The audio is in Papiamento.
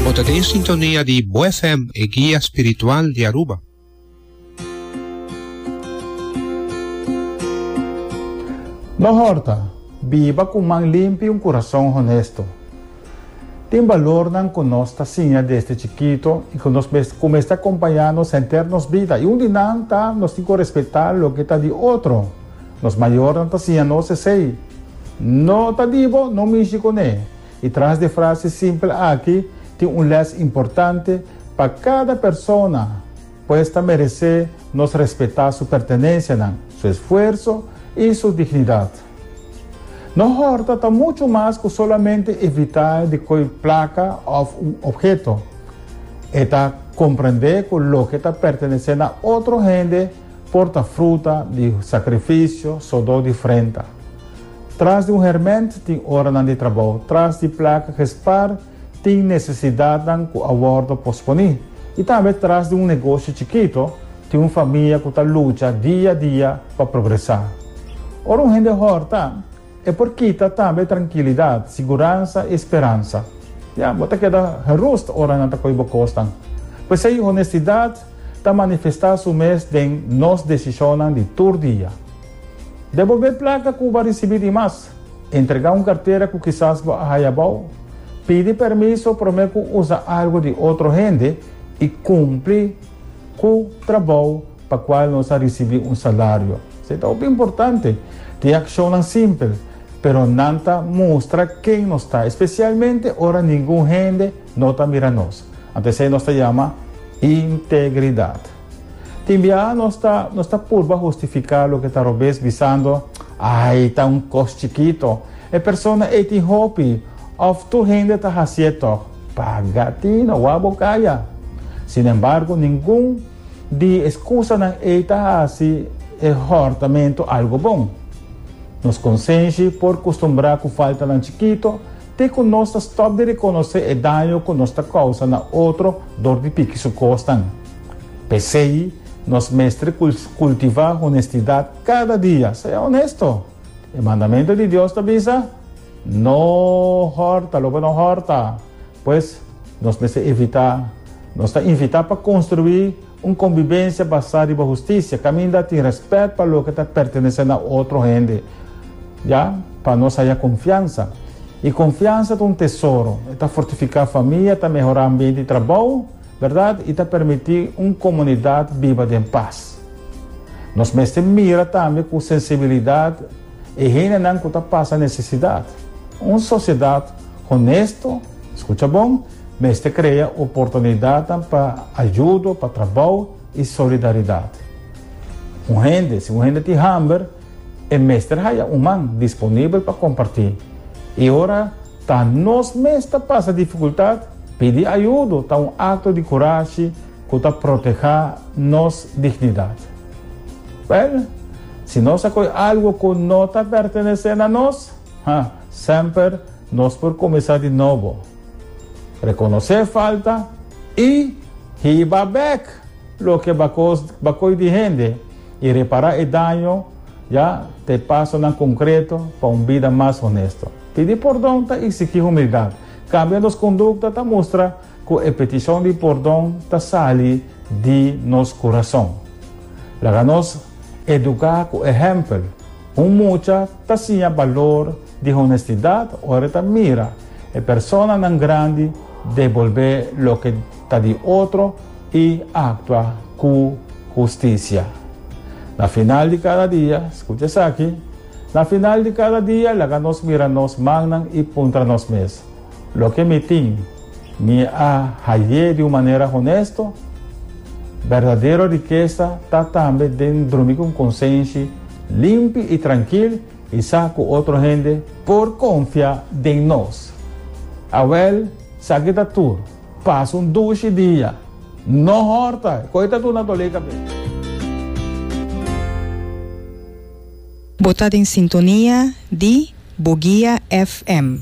Bo ta den sintonia di Bo FM, e guia spiritual di Aruba. No horta, Biba cu man limpi y un curason honesto. Tin balornan cu nos ta siña desde chikito y cu nos mes cu mester acompaña nos henter nos bida. Y un di nan ta nos tin cu respeta loke ta di otro. Nos mayornan ta siña nos esey, No ta di bo, no mishi cu ne. I tras di e frase simpel aki tin un lès importante, pa kada persona, pues ta meresé nos respetá su pertenensianan, su esfuerso i su dignidat. No hòrta ta muchu mas ku solamente evitá di koe plaka òf un opheto. E ta komprendé ku loke ta pertenesé na otro hende, Porta fruta di sakrifisio sodó di frenta. Tras di un herment tin oranan di trabou. Tras di plak gespar tin nesesidatnan ku a wòrdu posponí. I tambe tras di un negoshi chikito tin un famia ku ta lucha dia dia pa progresá. Ora un hende hòrta. E por kita tambe trankilidat, siguransa i speransa. Ya, bo ta keda gerust ora nan ta koe bo kosnan. P'esei honestidat ta manifestá su mes den nos desishonnan di tur dia. Den bo be plaka ku bo a risibí di mas, entregá un kartera ku kisas bo a haya bou, pidi permiso promé ku usa algu di otro hende i kumpli, Ku trabou pa kual nos a risibí un salario. Se ta hopi importante. Tin akshonnan simpel, pero nan ta mustra ken nos ta, spesialmente ora ningun hende no ta mira nos. Ant esei nos ta yama integridat. Tin biaha nos ta nos ta purba hustifiká loke ta robes bisando, Ai, ta un kos chikito. E persona ei tin hopi. Òf tur hende ta hasié tòg. Paga tin a wak bo kaya. Sin embargo, ningun di e skusanan ei ta hasi e hòrtamentu algu bon. Nos konsenshi por kustumbrá ku faltanan chikitu te ku nos ta stòp di rekonosé e daño ku nos ta kousa na otro dor di piki su kosnan. P'esei, nos mester kultivá honestidat kada dia. Sea honesto. E mandamentu di Dios ta bisa. No hòrta lo bo no hòrta. Pues, nos mester evitá. Nos ta invitá pa konstruí un konbibensia basá riba hustisia, kaminda tin rèspèt pa loke ta pertenesé na otro hende, ya pa nos haya konfiansa. I konfiansa ta un tesoro, e ta fortifiká famia, ta mehorá ambiente di trabou, bèrdat, i ta permití un komunidat biba den pas. Nos mester mira tambe ku sensibilidat. E hendenan ku ta pasa nesesidat. Un sosiedat honesto, skucha bon, mester krea oportunidatnan pa ayudo, pa trabou i solidaridat. Un hende, si un hende tin hamber, e mester haya un man disponibel pa kompartí. I ora ta nos mes ta pasa difikultat, pidi ayudo ta un akto di kurashi, Ku ta protehá nos dignidat. Bel, si nos a koe algu ku no ta pertenesé na nos, ha, semper nos por kuminsá di nobo, rekonosé e falta i hiba bek loke bakos bakoe di hende i repará e daño, ya, ta e pasonan konkreto pa un bida mas honesto. Pidi pordon ta iksigí humildat, kambia nos kondukta ta mustra. Cu e peticion di pordon ta sali di nos curason. Laga nos educa cu ehempel. Un mucha ta siña balor di honestidad ora e ta mira e personanan grandi debolbe loke ta di otro y actua cu husticia. Na final di cada dia, scucha esaki, Na final di cada dia laga nos mira nos mannan y puntra nos mes, Loke mi tin, mi a haye di un manera honesto. Berdadero rikesa ta tambe den drumi ku un konsenshi limpi i trankil i sa ku otro hende por konfia den nos. Awèl, sa ki ta tur, pasa un dushi dia, no hòrta e koi ta tur na dol'é kabes. Bo ta den sintonia di Bo Guia FM.